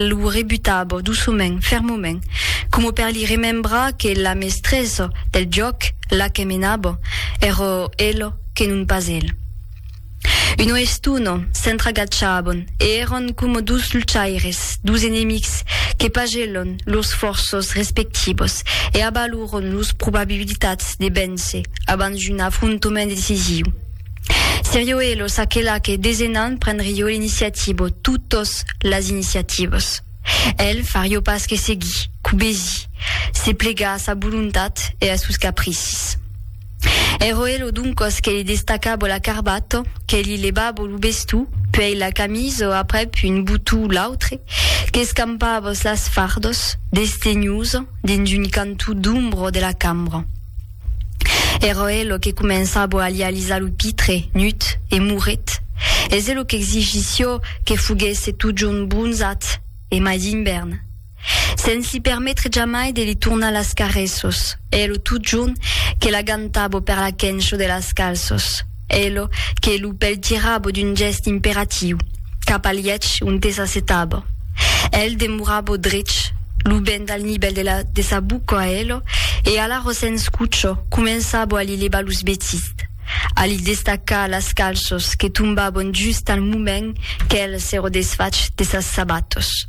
lo rebutava doçument, fermament, coma per li remembrar que la mestressa del jòc, la que menava, èra ela que non pas el. Una estona, s'entragachavan e èran coma dos luchaires, dos enemics, que pagelhan lors fòrças respectivas e avaloran lors probabilitats de véncer abans d'un afrontament decisiu. Serio e lo Saquelà que desenan prendrio l'iniciativa o totas las iniciativas. El fario pas que seguir, cubesir, se plegar a sa volontat e a sos capricis. Ero elo doncas que li destacabo la carbata, que li levabo lo bestó, puèi la camisa aprèp un botó o l'autre, qu'escampavas las fardas, desdenhosa, dins un cantó d'ombra de la cambra. Era hè lo que començabo a li alisar lo pitre, nut e mouret. Es hè lo qu'exigissió que foguesse totjorn bronzat e mai d'invèrn. Sens li permetre jamai de li tornar las caressos, hè lo totjorn que l'agantabo per la quenço de las calços. Elo que lo pèl tirabo d'un gèst imperatiu, cap al lièch onte s'assetabo. Èl demorabo drech, lo bènt al nivèl de la de sa boca a elo, e alara sens cocho començabo a li levar los vetists, a li destacar las calços que tombabon just al moment qu'èl s'èro desfach de sas sabatos.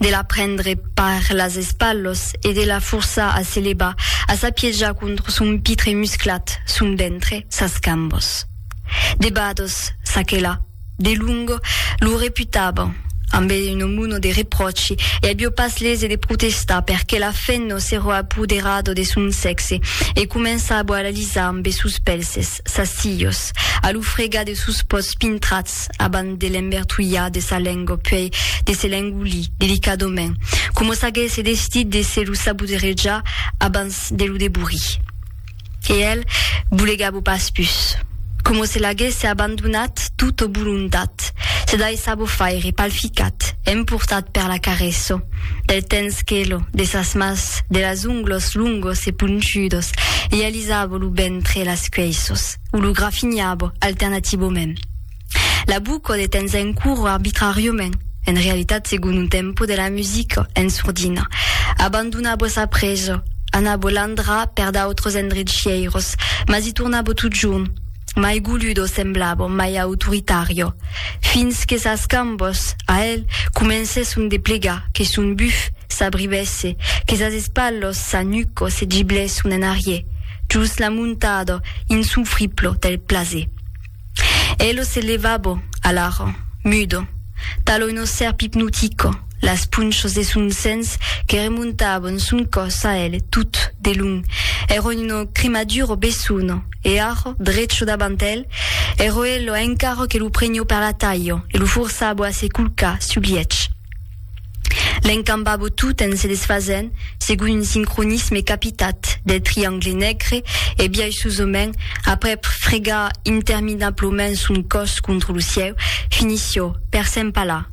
de la prendre par las espalhos e de la forçar a se levar, a s'apiejar contra son pitre musclat, son ventre, sas cambos. De bados, s'aquela, de longo, lo reputavan, ambe un muno de repròchi, e avió pas lese de protestar perque la fenno s'eró apoderado de son sexe e començabo a l'alisar ambe sos pelses. sas hilhos, a lo fregar de sos pòts pintrats abans de l'embertolhar de sa lengo puèi de se l'engolir delicadament, coma s'aguèsse destit de se lo saboterejar abans de lo deborir. E el bolegava pas pus, coma se l'aguèsse abandonat tot o volontat, se daissava faire palficat, emportat per la caresso del tens quelo de sas mas, de las onglos longos e ponchudos, e Lisabo lo ben près las cuèissos, o lo grafinhabo, alternativament. L'abuco de tens en coro arbitràriament, en realitat segon un tempo de la musica, en sordina. Abandonabo sa presa, anabo landrar per d'autres endrecièiros, mas i tornabo totjorn. mai goludo semblavo, mai autoritario. Fins que sas cambos, a el, comencèsson de plegar, que son buf s'abrivèsse, que sas espalhos, sa nuco se giblèsson en arrier, jos l'amontado insofriplo del plaser. Elo se levavo, alara, mudo, talo uno sèrp ipnotico, las punchas de son sens que remontavan son còs a el tot de long, èron una cremadura bessona, e ara, drecha davant el, èra ela encara que lo preniá per la talha e lo forçava a se colcar sul lièch. L'encambava tot en se desfasent segon un sincronisme capitat del triangle negre e biaishosament, après fregar interminablament son còs contra lo cièu, finissiá per s'empalar.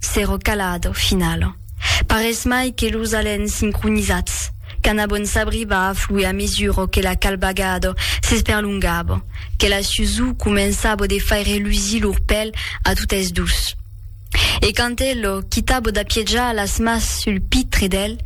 S'èro calado, finalo. Parés mai que los alens sincronizats, qu'an a bon sabrir va afluir a mesuro que la calbagado s'esperlongabo, que la susur començabo de faire lusir lor pèl a totes dos. E quand elo quitabo d'apiejar las mas sul pitre d'el,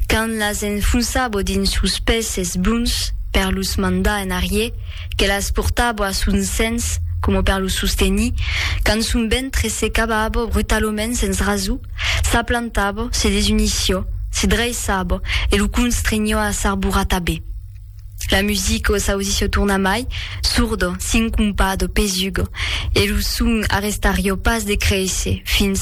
quand las enfonçabo dins sos pèses blonds per los mandar en arrier, Que las portabo a son sens, coma per lo sostenir, quand son ventre se cavabo brutaloments sens raso, s'aplantabo, se desunissió, se dreiçabo e lo constrenhió a s'arborar tabé. La musica o s'ausissió tornamai, sordo, sincompado, pesuga, e lo son arrestarió pas de créisser fins al